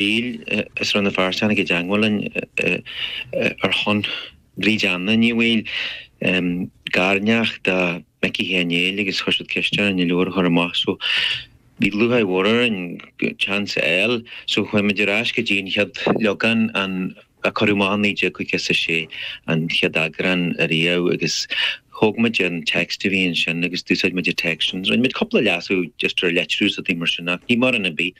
Bhuel is Rann na Feirste a chuaigh i dteangmháil linn ar shon Bríd Anna Ní Bhaoill, garneacht do Mhicí Sheáin Néill agus chuir siad ceist orainn an leabhar a chur amach so bhí lúcháir mhór orainn an chance a fháil so chuaigh muid ar ais go dtí an chéad leagan a cuireadh amach i 1956 an chéad eagrán ariamh agus thóg muid an text a bhí ansin agus d'úsáid muid an text sin rinne muid cúpla leasú just ar litriú is rudaí mar sin ach ní mórán ar bith.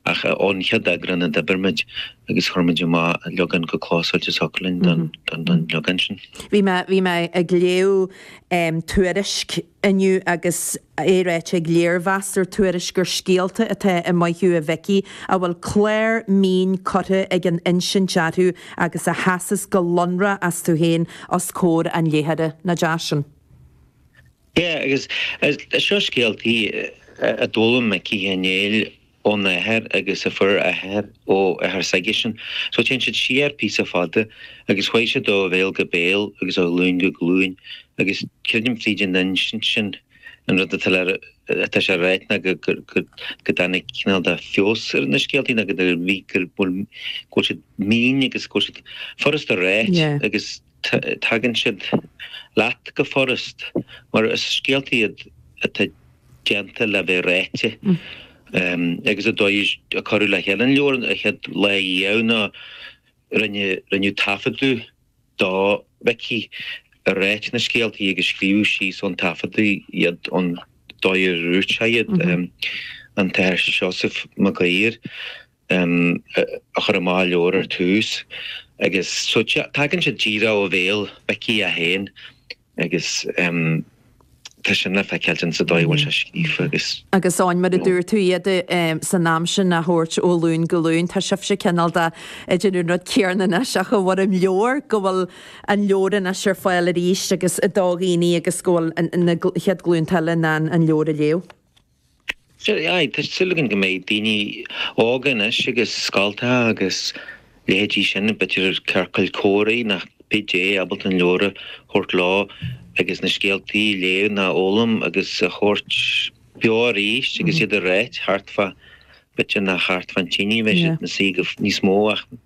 Ach ón chéad eagrán a d'oibir muid agus chuir muid amach an leagan chomh clósáilte is a thiocfadh linn don leagan sin. Bhí mé, bhí mé ag léamh Tuairisc inniu agus é ráite ag léirmheastóir Tuairisc gur scéalta atá i Maith thú a Mhicí a bhfuil clár mín curtha ag an insint orthu agus a sheasas go lonrach astu féin os comhair an léitheora. Nach deas sin? Yeah, agus seo scéaltaí a d'fhoghlaim Micí Sheáin Néill óna athair agus a fuair a athair ó athair s'aigesean. So téann siad siar píosa fada agus chuaigh siad ó bhéal go béal agus ó ghlúin go glúin agus creidim fríd an insint sin an rud atá le, atá sé ráite ná go, go dtáinig cineál de feabhas ar na scéaltaí ná go, go bhfuil siad mín agus go bhfuil siad furasta ráite agus. tagann siad leat go furast mar is scéalta iad atá déanta le bheith ráite agus an dóigh a cuireadh le chéile an leabhar an chéad lá riamh ná rinneadh taifeadadh do Mhicí ag ráit na scéaltaí agus scríobhadh síos ón taifeadadh iad an dóigh a dhúirt sé iad, an tAthair Seosamh Mag Uidhir. um a chuir amach an leabhar ar tús agus so tagann sé díreach ó bhéal Mhicí é féin agus um tá sin le feiceáil ann sa dóigh a bhfuil sé scríofa agus. Agus Áine, mar a dúirt tú, iad um san am sin á thabhairt ó ghlúin go glúin, tá sibhse cineál de ag déanamh an rud céanna anois ach i bhfoirm leabhair, go bhfuil an leabhar anois ar fáil arís agus do dhaoine agus go bhfuil na chéad ghlúnta eile in ann an leabhar a léamh. Sea, tá súil againn go mbeidh daoine óga anois agus scoltacha agus leithéidí sin b'fhéidir ciorcail comhrá ná cibé ábalta an leabhar a thabhairt leo agus na scéaltaí a léamh ná a fhoghlaim agus a thabhairt beo arís agus iad a ráit thart fá, b'fhéidir nach thart fán tine a mbeidh siad ina suí go níos mó ach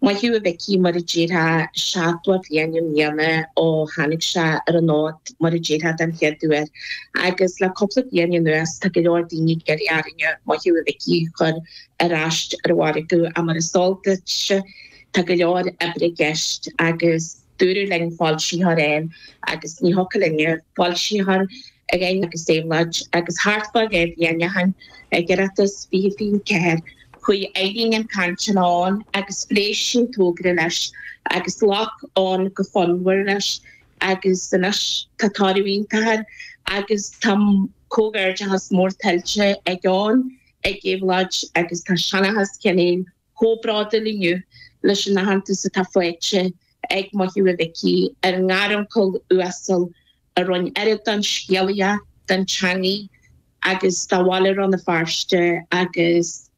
Maith thú a Mhicí, mar a déarfá, seachtó bliain i mbliana ó tháinig sé ar an fhód, mar a déarfá, den chéad uair, agus le cúpla bliain anuas tá go leor daoine ag iarraidh orainne Maith thú a Mhicí a chur ar ais ar an mhargadh ach mar is eol duitse tá go leor oibre i gceist agus dúradh linn foilsitheoir a fháil agus ní thiocfadh linne foilsitheoir ag Eoghan agus Éabhlóid, agus thart fá ghéibh dhéanneacháin ag Oireachtas fiche fiche ceathair, chuaigh Irene chun cainte le Eoghan agus phléigh sí an togra leis agus ghlac Eoghan go fonnmhar leis agus anois tá toradh iontach air agus tá comhghairdeachas mór tuillte ag Eoghan, ag Éabhlóid agus tá Seanchas Sheáin Néill chomh bródúil inniu leis an aitheantas atá faighte ag Maith Thú a Mhicí, ár ngaruncail uasal a roinn oiread den scéalaíocht, den teangaidh agus dá bhaile Rann na Feirste agus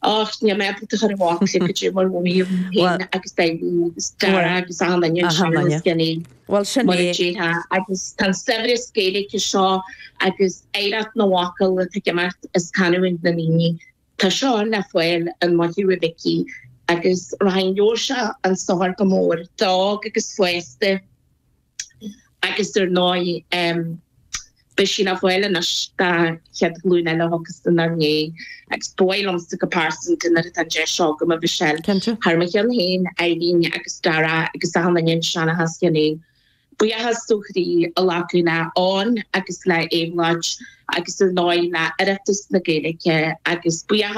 och, níl mé ábalta a chur i bhfocla go deo mar a mhothaím féin agus Daidí agus Dara agus achan nduine i Seanchas Sheáin Néill mar a déarfá agus tá an saibhreas Gaeilge seo agus oidhreacht na bhfocal atá ag imeacht as canúint na ndaoine Tá seo le fáil in Maith Thú a Mhicí agus rachaidh an leabhar seo chun sochair go mór d'óg agus d'aosta agus ar ndóigh beidh sí le fáil anois don chéad ghlúin eile a thiocfas inár ndiaidh agus ba mhaith liomsa go pearsanta nuair atá an deis agam a Mhichelle, thar mo cheann féin, Irene agus Darragh agus achan nduine i Seanchas Sheáin Néill. Buíochas ó chroí a ghlacadh le Eoghan agus le Éabhlóid agus ar ndóigh le hOireachtas na Gaeilge agus buíochas